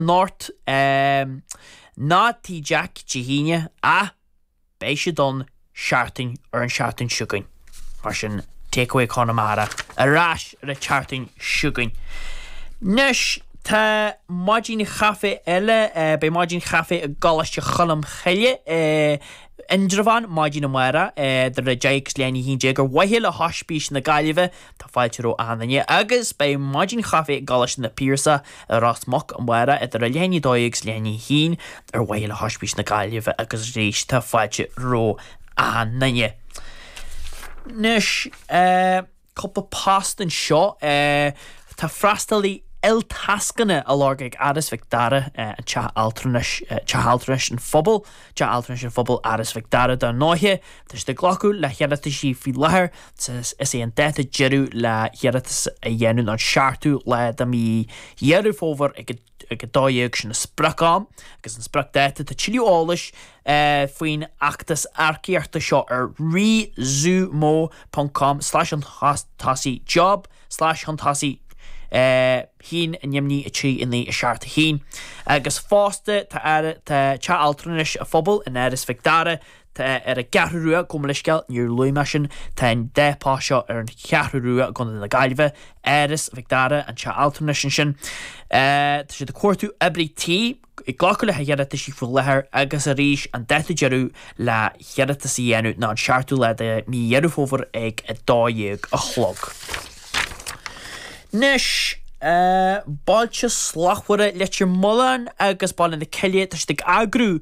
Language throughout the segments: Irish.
North, em. ná Tigh Jack Dé hAoine, ach beidh siad ann seachtain, ar an tseachtain seo chugainn, mar sin, Takeaway Chonamara ar ais ar an tseachtain seo chugainn. 'Nois, tá maidin chaife eile, eh, beidh maidin chaife i gColáiste Cholm Chille in Indreabhán maidin amárach, eh, idir a deich agus leath i ndiaidh a haon déag, ar mhaithe le hOispís na Gaillimhe, Tá fáilte roimh achan duine agus beidh maidin chaife i gColáiste na bPiarsach i Ros Muc amárach idir a leath i ndiaidh a 12 agus leath i ndiaidh a 1 ar mhaithe le hOispís na Gaillimhe agus arís tá fáilte romh achan duine. Anois cúpla post anseo. Tá freastalaí iltascanna á lorg ag Áras Mhic Dara, an teach altranais, Teach Altranais an Phobail, Teach Altranais an Phobail, Áras Mhic Dara dar ndóighe. Tá siad ag glacadh le hiarrataisí faoi láthair. Is é an dáta deireadh le hiarratas a dhéanamh ná an seachtú lá de mhí Dheireadh Fómhair ag 12:00. Sin an sprioc-am agus an spriocdáta. Tá tuilleadh eolais faoin fheachtas earcaíochta seo ar rezoomo.com slash chun tosaigh job slash chun tosaigh chinn in imní 3, 9, 7, 1. Agus fosta tá Teach Altranais an Phobail in Áras Mhic Dara Tá é ar an gCeathrú Rua, gabh mo leithscéal, níor luaigh mé sin, tá an dá phost seo ar an Cheathrú Rua i gContae na Gaillimhe, Áras Mhic Dara, an teach altranais ansin. Tá siad ag cuartú oibrí tí, ag glacadh le hiarrataisí faoi láthair agus arís an dáta deireadh le hiarratas a dhéanamh ná an seachtú lá de mhí Dheireadh Fómhair ag a dó dhéag a chlog. Anois Bailte Slachtmhara, Leitir Mealláin agus Baile na Cille, tá siad ag eagrú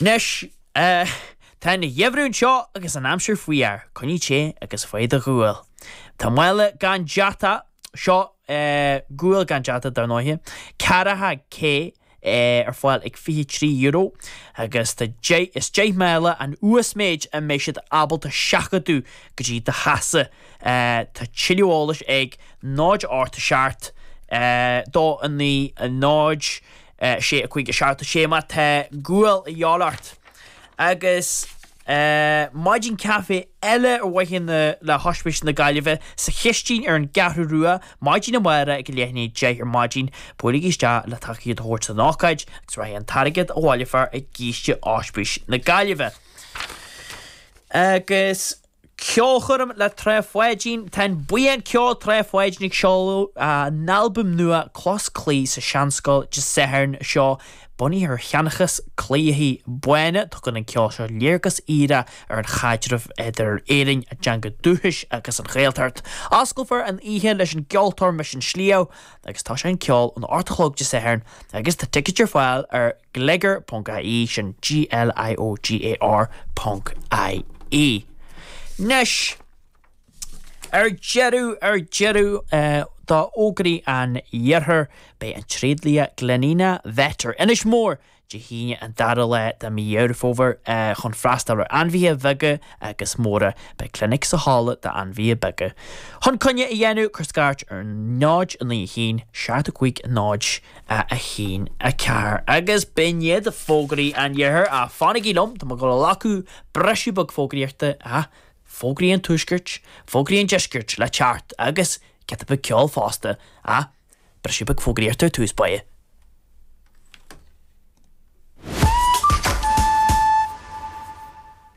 Anois, tá an geimhreadh anseo agus an aimsir fuar, coinnigh te agus faigh do ghual. Tá mála gan deatach, seo gual gan deatach dar ndóighe, ceathracha K, ar fáil ag €23 agus tá deich, is deich mála an uasmhéid a mbeidh siad ábalta seachadadh go dtí do theachsa. Tá tuilleadh eolais ag, 0 8 7 2 9 0. 6 5 7 6 má tá gual de dhíobháil ort agus maidin caife eile ar mhaithe le hOspís na Gaillimhe sa Chistin ar an gCeathrú Rua maidin amárach ag a leath i ndiaidh deich ar maidin. Buailigí isteach le tacaíocht a thabhairt don ócáid agus rachaidh an t-airgead a bhaileofar i gciste Ospís na Gaillimhe. Agus. Ceolchoirm le Trá Pháidín Tá an buíon ceoil Trá Pháidín ag seoladh a n-albaim nua Cloch 's Claí sa Seanscoil Dé Sathairn seo. Bunaithe ar sheanchas Cliathaí Báine, tugann an ceol seo léargas fhíre ar an chaidreamh idir Éireannaigh, a dteanga dúchais agus an Ghaeltacht. Osclófar an oíche leis an gceoltóir Mise an Sliabh agus tosóidh an ceol ag a hocht a chlog Dé Sathairn agus tá ticéid ar fáil ar. Gliogar ponc IE, sin G-L-I-O-G-A-R ponc I-E. Anois, ar deireadh, ar deireadh, d'fhógraí an iarthair, beidh an tréadlia Glenina Vet ar Inis Mór, Dé hAoine an dara lá de mhí Dheireadh Fómhair chun freastal ar ainmhithe bheaga agus móra. Beidh clinic sa halla d'ainmhithe beaga. Chun coinne a dhéanamh, cuir scairt ar 0 9 1 7 5 0 1, 4, agus b'in iad fógraí an Iarthair, ach fanaigí liom, tá mé ag dul a ghlacadh briseadh beag fógraíochta, ha! Fógraí an Tuaiscirt, fógraí an Deiscirt, le teacht, agus giota beag ceoil fosta, ha! Briseadh beag fógraíochta ar tús báire.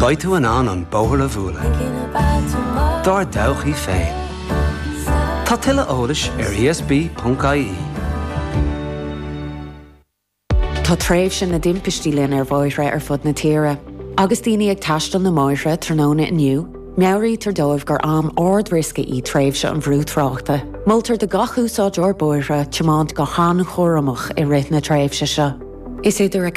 Beidh tú in ann an bóthar a bhualadh dár dtodhchaí féin. Tá tuilleadh eolais ar ESB.ie. Tá tréimhse na dtimpistí linn ar bhóithre ar fud na tíre. Agus daoine ag taisteal na mbóithre tráthnóna inniu, meabhraítear dóibh gur am ard-riosca í tréimhse an bhrú tráchta. Moltar do gach úsáideoir bóithre tiomáint go han-chúramach i rith na tréimhse seo. Is idir a.